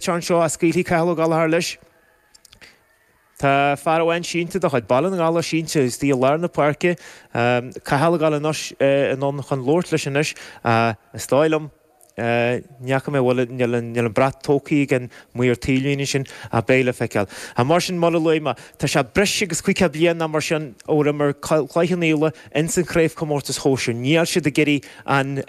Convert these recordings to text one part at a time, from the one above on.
cheann seo a scaoilfidh Cathal Ó Gallachar leis. Tá fear amháin sínte de chuid Baile na nGall sínte istigh i lár na páirce. Cathal Ó Gallachar anonn chun labhairt leis anois. Is dóigh liom, ní fhaca mé, bhuel níl an brat tógtha ag an maor taobhlíne sin ach beidh le feiceáil. Mar sin mar a luaigh mé, tá sé breis agus 500 bliain nó mar sin ó d'imir Cloich Cheann Fhaola. ins an craobhchomórtas shóisir. Níl siad ag iarraidh an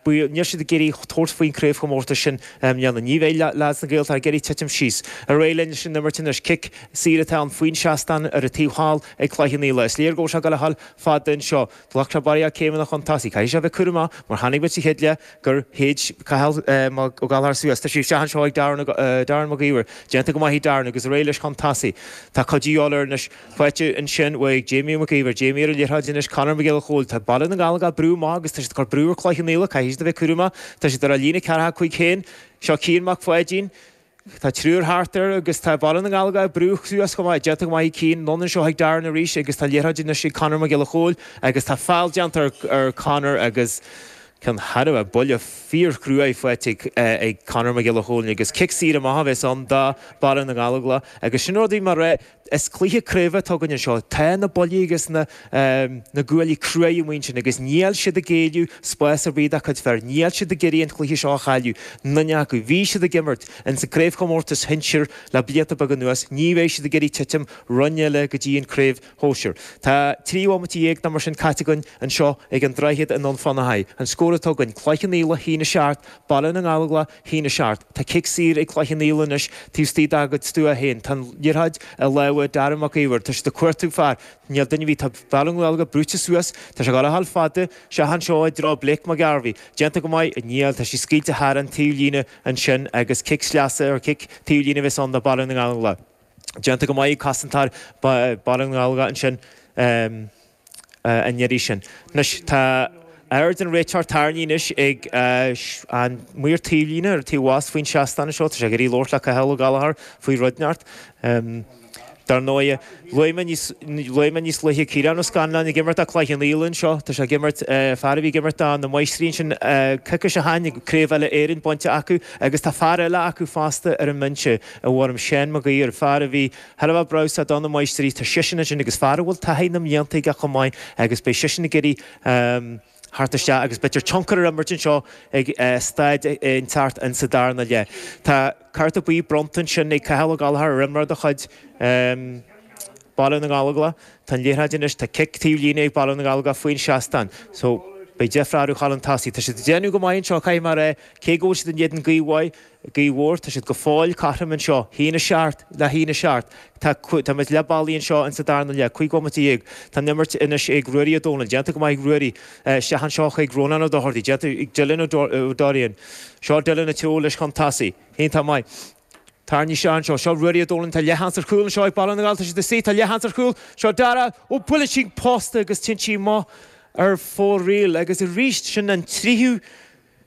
baol, níl siad ag iarraidh tabhairt faoin craobhchomórtas sin i mbliana. Ní bheidh leaids na Gaeltachta ag iarraidh titim síos. Ar aghaidh linn leis an imirt anois. Cic saor atá ann faoin seastán ar an taobh thall ag Cloich Cheann Fhaola. Is léir go bhfuil sé ag dul a ghabháil fada anseo. Ghlac sé barraíocht céimeanna chun tosaigh. Caithfidh sé a bheith cúramach mar chonaic muid sa chéad leath gur shéid Cathal Ó Gallachar suas. Tá sí isteach anseo ag Darren Mac Íomhair. Déanta go maith ag Darren agus ar aghaidh leis chun tosaigh. Tá cuidiú de dhíobháil air anois. Faighte ansin uaidh Jamie Mac Íomhair Jamie ar an liathróid anois Conor Mac Giolla Chóill Tá Baile na nGall ag brú maith agus tá siad ag cur brú ar Cloich Cheann Fhaola Caithfidh siad a bheith cúramach tá siad ar a líne ceathracha cúig féin Seo Cian Mac Pháidín Tá triúr thart air agus tá Baile na nGall ag brú suas chomh maith Déanta go maith ag Cian anonn anseo chuig Darren arís agus tá an liathróid anois ag Conor Mac Giolla Chóill agus tá feall déanta ar Conor agus ceann thairbhe ar buille fíorchruaidh faighte ag Conor Mac Giolla Chóill agus cic saor amach a bheas ann do Bhaile na nGall agus sin rud a bhí mar Is cluiche craoibhe atá againn anseo. Tá na buillí agus na guaillí crua amuigh anseo agus níl siad ag géilleadh spás ar bith dá gcuid fear. Níl siad ag iarraidh an cluiche seo a chailleadh, duine acu. Bhí siad ag imirt ins an gcraobhchomórtas shinsir le blianta beaga anuas. Ní bheidh siad ag iarraidh titim roinn eile go dtí an craobh shóisir. Tá trí bhomaite dhéag nó mar sin caite againn anseo ag an Droichead i nDún Fionnachaidh. An scór atá againn, Cloich Cheann Fhaola, a haon a seacht, Baile na nGallóglach, a haon a seacht. Tá cic saor ag Cloich Cheann Fhaola anois taobh istigh dá gcuid stua féin. Tá an liathróid i lámha Darragh Mac Íomhair. Tá sé ag cuartú fear. Níl duine ar bith. Tá Baile na nGallóglach brúite suas. Tá sé ag dul a ghabháil fada. Isteach anseo i dtreo Blake Mac Gairbheith. Déanta go maith. Níl. Tá sí scaoilte thar an taobh líne ansin agus cic sleasa ar chic taobh líne a bheas ann do Baile na nGallóglach. Déanta go maith ag cosantóir Baile na nGallóglach ansin. an iarraidh sin. Anois tá aird an réiteoir tarraingthe anois ag an maor taobhlíne ar an taobh abhus faoin seastán anseo. Tá sé ag iarraidh labhairt le Cathal Ó Gallachar faoi rud inteacht. Dar ndóigh, luaigh mé níos luaigh mé níos luaithe Ciarán Ó Scanláin ag imirt do Cloich Cheann Fhaola anseo. Tá sé ag imirt fear a bhí ag imirt do na Máistrí ansin coicís ó shin agus Craobh Uile-Éireann bainte acu agus tá fear eile acu fosta ar an mbinse i bhfoirm Shaun Mag Uidhir, fear a bhí ar fheabhas do na Máistrí, tá seisean ansin agus fear a bhfuil taithí na mblianta aige chomh maith agus beidh seisean ag iarraidh theacht isteach agus tionchar a imirt anseo ag staid inteacht in sa darna leath. Tá cárta buí bronnta ansin ag Cathal Ó Gallachar ar imreoir de chuid Baile na nGallóglach. Tá an liathróid anois, tá cic taobh líne ag Baile na nGallóglach faoin seastán so beidh deifre orthu chun an tosaigh. Tá siad ag déanamh go maith anseo caithfidh mé a rá cé go bhfuil siad in éadan gaoth mhaith, Gaoth mhór, tá siad go fóill cothrom anseo. Haon a seacht le haon a seacht. Tá, tá muid leath bealaigh anseo insa darna leath, cúig bhomaite dhéag. Tá an imirt anois ag Ruairí Ó Dónaill. Déanta go maith ag Ruairí. Isteach anseo chuig Rónán Ó Dochartaigh. Déanta ag Dylan Ó Dorrian. Seo Dylan ag tiomáint leis chun tosaigh. Hine, tá maith. Tairní isteach anseo. Seo Ruairí Ó Dónaill. Tá leathsheans ar chúl anseo ag Baile na nGall. Tá siad ag suí. Tá leathsheans ar chúl. Seo Dara. Ó, buaileann sí an posta agus téann sí amach ar fóraoil. Agus arís, sin an tríú.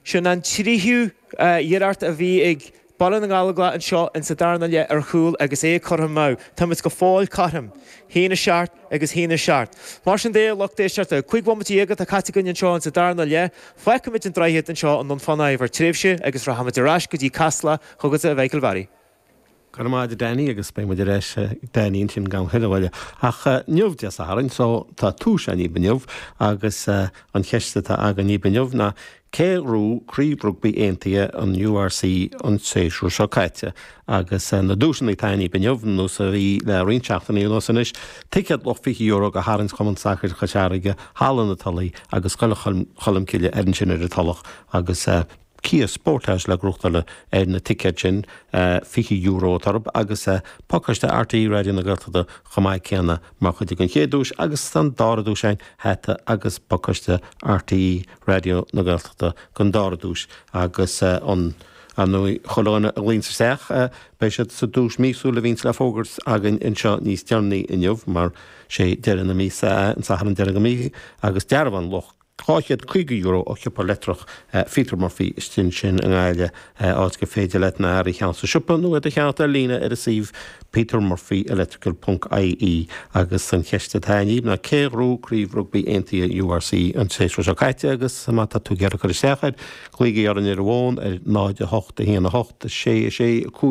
Sin an tríú iarracht a bhí ag Baile na nGallóglach anseo in sa darna leath ar chúl agus é curtha amú. Táimid go fóill cothrom. Haon a seacht agus haon a seacht. Mar sin de, lucht éisteachta, cúig bhomaite dhéag atá caite againn anseo in sa darna leath. Fágfaimid an Droichead anseo i nDún Fionnachaidh ar feadh tréimhse agus rachaimid ar ais go dtí Casla chugat a Mhichael Bharry. Go raibh maith agat a Danny agus beidh muid ar ais ag Danny ansin gan a thuilleadh moille. Ach inniu Dé Sathairn so tá tomhas againn daoibh inniu agus an cheist atá againn daoibh inniu ná cé a ghnóthaigh Craobh Rugbaí Aontaithe an URC an séasúr seo caite agus na duaiseanna atá againn daoibh inniu nós a bhí le roinnt seachtainí anuas anois ticéad luach €20 do tharraingt Chumann Sacair Chois Fharraige, Halla na Tulaí agus Scoil Cholmcille ar an sin ar an Tulach agus Kia Sportage le gnóthachtáil ar na ticéid sin, €20 atá orthub agus pacáiste RTÉ Raidió na Gaeltachta chomh maith céanna mar chuid den chéad duais agus an dara duais ann, hata agus pacáiste RTÉ Raidió na Gaeltachta den dara duais agus ar ndóigh chuile dhuine a ghlaonn isteach. Beidh siad sa duais míosúil a bhíonns le fógairt againn anseo níos deireanaí inniu mar sé deireadh na míosa é an Satharn deiridh den mhí agus dearbhán luach €250 ó shiopa leictreach Peter Murphy istigh ansin i nGaillimh, áit gur féidir leat na hearraí a cheannacht sa siopa nó iad a cheannacht ar líne ar an suíomh petermurphyelectrical.ie. Agus an cheist atá inniu ná cé a ghnóthaigh craobh rugbaí aontaithe URC an séasúr seo caite agus má tá tú ag iarraidh cur isteach air, glaoigí orainn ar an bhfón ar 08 18 6 6 5